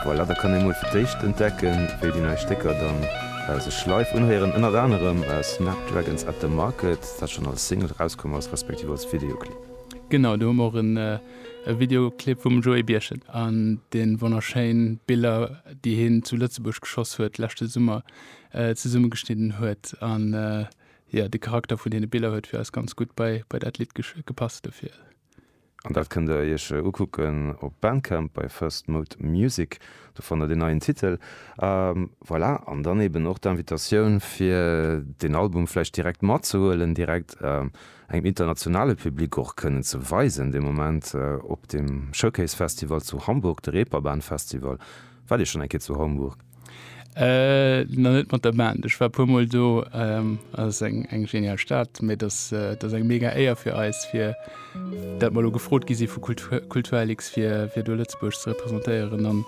Voilà, da kann ee mol fir d'éischt entdecken, wéi déi nei Stécker dann sech live unhéieren. Ënnert anerem Snapdragons At The Market, dat schonn als Single erauskomm ass, respektiv als Videoclip. Genau, do hu mer och e Videoclip vum Joé Birchen an de wonnerschéin Biller, déi hien zu Lëtzebuerg geschoss huet leschte Summer, zesummegeschnidden huet. An jo, de Charakter vun deene Biller huet fir eis ganz gutt bei dat Lidd gepasst dofir. An dat kënnt der iech ukucken op Bandcamp bei First Mode Music, do fannt der den neien Titel. A voilà, an dann eben och d'Invitatioun fir den Album vläicht direkt matzehuelen, direkt engem internationale Public och kënnen ze weisen de Moment op dem Showcase Festival zu Hamburg, de Reeperbahn Festival. Waart Dir schonn eng Kéier zu Hamburg? Nach net mat der Band. Ech war puer mol do. Ass eng eng genial Stad, mee dass dass eng mega Éier fir eis fir dat mer elo gefrot gi si vu Kultur Kulturlix fir fir do Lëtzebuerg ze representéieren an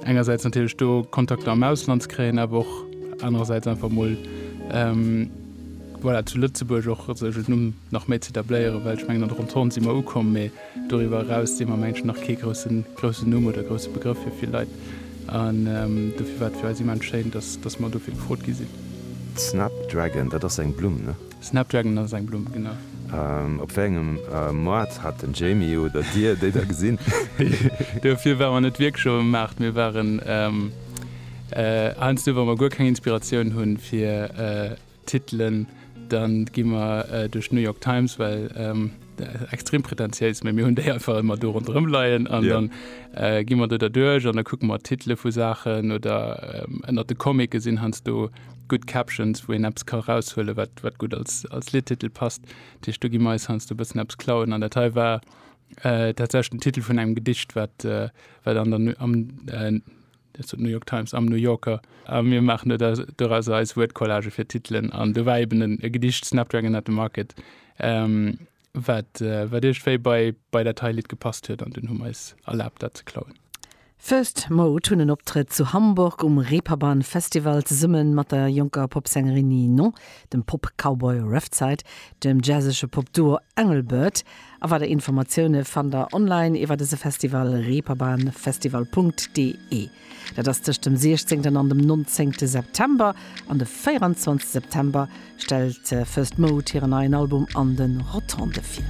engersäits natierlech do Kontakter am Ausland ze kréien, awer och anerersäits einfach mol voilà zu Lëtzebuerg och sech en Numm nach méi z'etabléieren, well ech mengen an der Entente si mer ukomm. Doriwwer eraus sinn mer am Engleschen nach kee groussen Numm oder grousse Begrëff fir vill Leit an dofir war et fir eis immens schéin, dass mer dofir gefrot gi sinn. Snapdragon, dat ass eng Blumm, ne? Snapdragon ass eng Blumm, genau. Op wéi engem Moart hat den Jamie oder Dir déi da gesinn? Dofir ware mer net wierklech op dem Maart. Mir waren heiansdo, wa mer guer keng Inspiratioun hunn, fir. Titelen, dann gi mer duerch d'New York Times, well extrem pretentiéis, mee mir hunn déi einfach ëmmer do ronderëm leien an dann gi mer do derduerch an da kucke mer d'Titele vu Saachen oder ënnert de Comicke sinn heiansdo gutt Captions, wou een eppes ka eraushuelen, wat gutt als Lidtitel passt. Dat heescht, do gi mer eis heiansdo e bëssen eppes klauen an dat hei war tatsächlech den Titel vun engem Gedicht, wat am. Dat sot d'New York Times am New Yorker. A mir maachen do da dorauser eis Wuertcollage fir d'Titelen. An do war eben e Gedicht, Snapdragon at the Market, wat, wat iergendwéi bei, bei dat hei Lidd gepasst huet. An dunn hu mer eis erlaabt, dat ze klauen. First Mode hunn en Optrëtt zu Hamburg um Reeperbahn Festival zesumme mat der jonker Popsängerin Ninon, dem Pop-Cowboy Reftside, dem jazzege Popduo Engelbert A weider Informatioune fannt der online iwwer dëse Festival, reeperbahnfestival.de. Dat ass tëscht dem 16 an dem 19 September. An de 24 September stellt First Mode hiren neien Album An den Rotondë vir.